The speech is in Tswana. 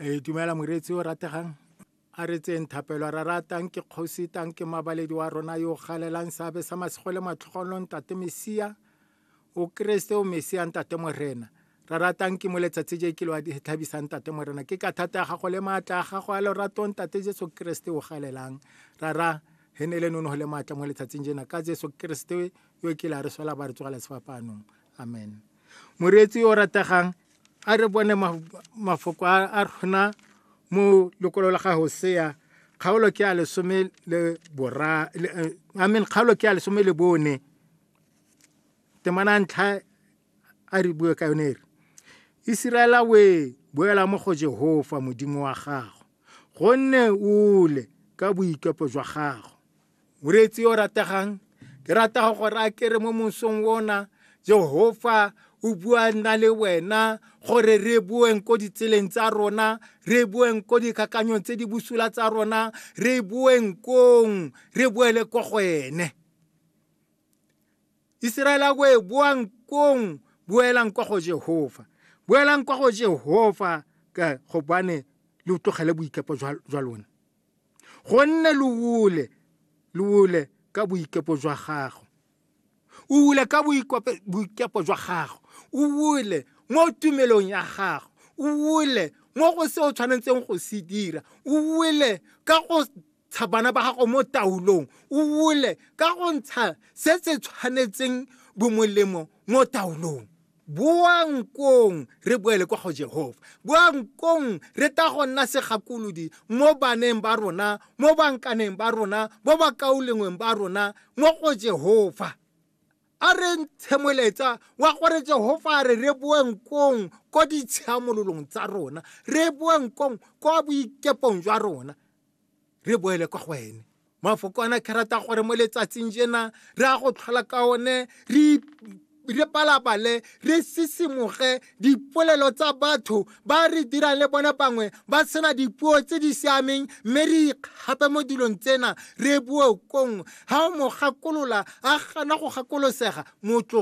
e dumela moreetsi o rategang a re tseng thapelo ra ratang ke kgosi tang ke mabaledi wa rona yo galelang seabe sa masego le matlhogonolo ntate mesia o keresete o mesia ntate morena ra ratang ke mo letsatsi je ke lo tlhabisang tate morena ke ka thata ya gago le maatla a gago a loratong tate jesu keresete o galelang rara he ne le nonogo le maatla mo letsatsing jena ka jesu keresete yo ke la re sola ba re tsogela sefapaanong amen Moreetsi o rategang a re bone mafoko a rona mo lekolo la ga Hosea kgaolo ke a lesome le bora eh, I mean kgaolo ke a lesome le bone temana ntlha a re bue ka yone re Isiraela we boela mo go Jehova modimo wa gago gonne ole ka boikepo jwa gago moreetsi yo o rategang ke rata go gore a kere mo mosong ona jehofa o bua nna le wena gore re boeng ko ditseleng tsa rona re boeng ko dikakanyong tse di busula tsa rona re boeng kong re boele ko go ene iseraele a boe boang kong boelang kwa go jehofa boelang kwa go jehofa ka gobane le utlogele boikepo jwa lona gonne lo wule lo wule ka boikepo jwa gago o wule ka boikepo jwa gago o wule mo tumelong ya gago o wule mo go se o tshwanetseng go se dira o wule ka go ntsha bana ba gago mo taolong o wule ka go ntsha se se tshwanetseng bomolemo mo taolong boang kong re boele kwa go Jehofa, boang kong re ta go nna segakolodi mo baneng ba rona, mo bankaneng ba rona, mo bakaulengweng ba rona, mo go Jehofa. A re ntshemoletsa wa gore Jehofa a re re boeng kong ko ditshiamololong tsa rona, re boeng kong kwa boikepong jwa rona. re boele kwa go ene mafoko ana ke rata gore mo letsatsing jena re a go tlhola ka one re re palabale re sisimoge dipolelo tsa batho ba re dirang le bone bangwe ba sena dipuo tse di siameng mme re ikgape mo dilong tsena re boe kong ga o mo gakolola a gana go gakolosega motloge